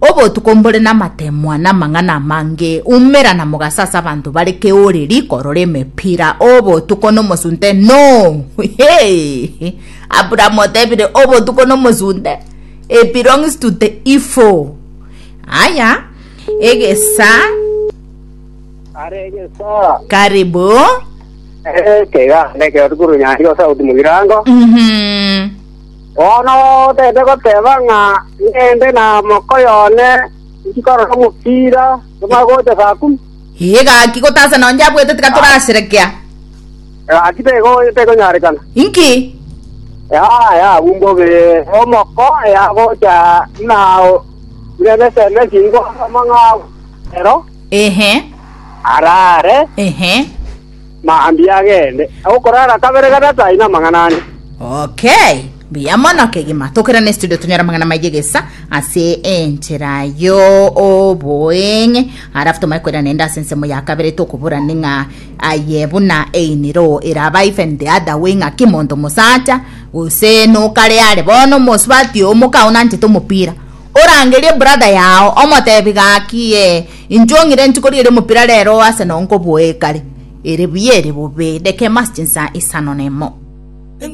Obotuko mbore namatemwa na amang'ana amange, umera na mogaso ase abanto bare keoreri korora emepira obotuko na omosunte noo heeeh Abraham otebire obotuko na omosunte e belongs to the evil aya egesa Are egesaa. karibu Eh, kega, neke otukuru nyari o sauti mugirango. mhm Bono tende goteba ng'a ngende na mokoyo one inki korora omopira tomanye gocha saa kumi. Ee, gaki gotasa nonye abwete tiga toraserekea. Gaki tekonyarekana. Inki? Yaya, bumbobe omoko yagocha na burebe esende chinko as'amang'ao ero. Ehe. Arare. Ehe. mambia agende, agokorara kabere gatato aino amang'ana ane. Okay, mbuya mono kegima. Tokera ne studio tonyore amang'ana maye gesa ase enchera yo oboeng'e. Arafu tomaye kwera nende ase ensemo ya kabere tokobora ni ng'a aye buna einiro eraba even the other way ng'a kimonto mosacha gose nokare are bono omosubati omoka onanchete omopira orangerie brother yao omotebi gaki eh, Intwe ong'ire nti koria ere omopira rero oo ase noo nkoboee kare. Ere buya ere bobe, dekema ase chinsaa isano nemo.